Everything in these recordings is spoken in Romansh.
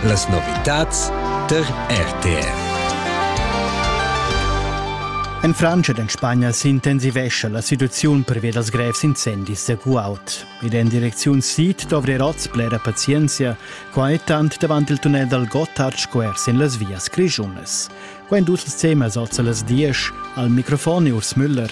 Las novitads tar RTR. En Frantscha ed en Spagna s'intensivescha la situaziun pervia dals grevs incendis da Guaut. Ed en direcziun sid dovri oz blera pazienzia, quai tant davant il tunnel dal Gotthard square sin las vias grischunas. Quai en tut ils temas oz a las 10 al microfon Urs Müller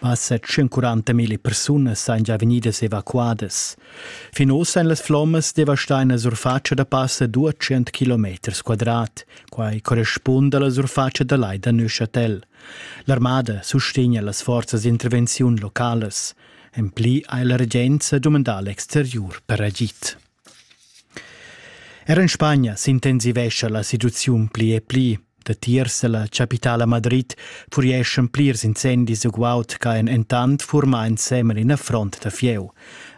Massa 140 mila persunas ein già vegnidas evacuadas. Fin ossa ein las flommas devastain la surfatscha da passa 200 km quadrat. Quai correspunda alla surfatscha da lai da Neuchâtel. L'armada sustegna las forzas d'intervenziun localas. En pli ha la regenza dumandà l'exteriur per agid. Er en Spagna s'intensivescha la situaziun pli e pli. Datiers dalla capitala Madrid furieschan plirs incendis e guaud che ein entant furma ensemen ina front da fieu.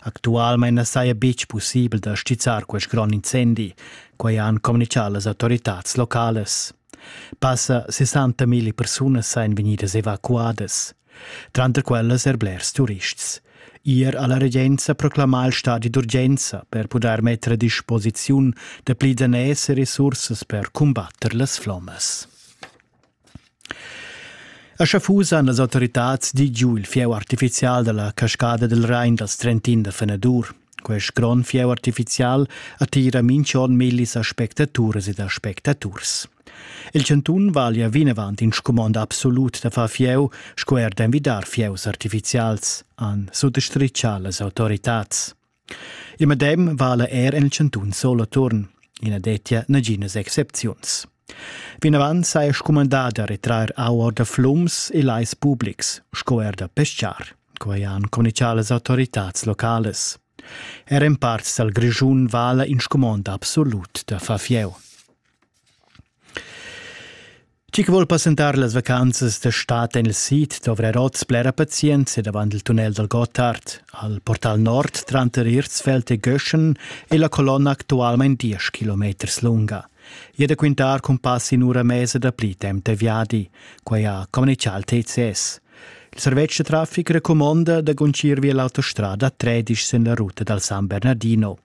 Actualmein na saja betg pussibel da stizzar quest grond incendi. Quai han communichà las autoritads locales. Passa 60 mila persunas ein vegnidas evacuadas, tranter quellas er blers turists. Ier ha la regenza proclamà il stadi d'urgenza per pudair metter a disposiziun da pli daners e resursas per cumbatter las flommas. A Schaffusa han las autoritads di giu il fieu artifizial dalla cascada del Rhein dals Trentin da Fenadur. Quest grond fieu artificial attira minch'on millis aspectaturas ed aspectaturs. Il chantun vaglia vinavant in scumond absolut da far fieu sco er d'envidar fieus artificials, han suttostrichà las autoritads. Il medem vala er en il chantun Soloturn. I na dettia naginas excepziuns. Vinavant saja scumandà da retrair aur da flums e lais publics, sco er da peschar. Quai han communichà las autoritads localas. Er en parts dal Grischun vala in scumond absolut da far fieu. Chi che vuol passentar las vacanzas da stat en il sid dovrà oz blera pazienza davant il tunnel dal Gotthard, al portal nord tranter Irzfeld e Göschen e la colonna actualmain 10 km lunga. E da quintar cun pass in ura mesa da pli temp da viadi, quai ha communichà il TCS. Il servetsch da traffic recumonda da guntgir via l'autostrada tredisch sin la ruta dal San Bernardino.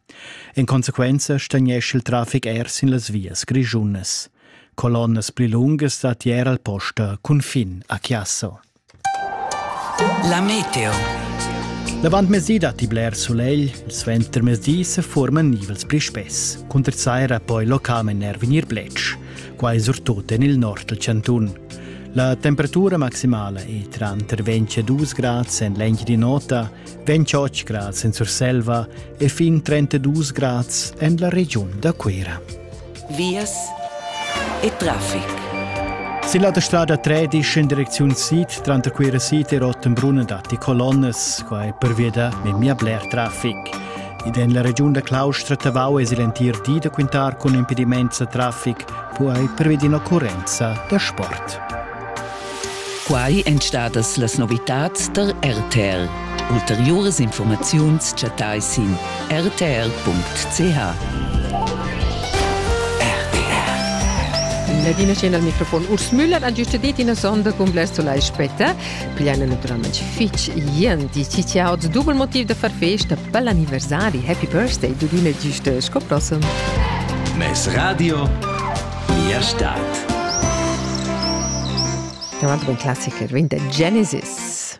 En consequenza stagnescha il traffic er sin las vias grischunas. Colonnas pli lungas dat ier al posta cunfin a Chiasso. La meteo. L'avantmezdi datti bler sulegl, il suentermezdi se forman nivels pli spess. Cunter saira poi localment er vegnir bletsch. quai surtut en il nord dal chantun. La temperatura maximala è tranter 22 grad en l'Engiadin'Ota, 28 grad en Surselva e fin 32 grad en la regiun da Cuira. Vias e traffic. Sin la strada 13 in direcziun sid, tranter Cuira Sid e Rottenbrunn datti colonnes, quai pervia da memia bler traffic. Ed en la regiun da Claustra Tavau es il entir di da quintar cun impedimaints da trafic, quai pervi d'in'occurrenza da sport. Quai èn stadas las novitads tar RTL. Ulteriuras informaziuns chattais sin rtl.ch. Ladina Scena al microfon. Urs Müller ha giusta dit ina sonda cun blers solai spetta. Pliana naturalmente fitch ien di ci tia oz dubel motiv da far festa per l'anniversari Happy Birthday du dine giusto sco prossem. Mes radio mia stadt. Un altro classico, Genesis.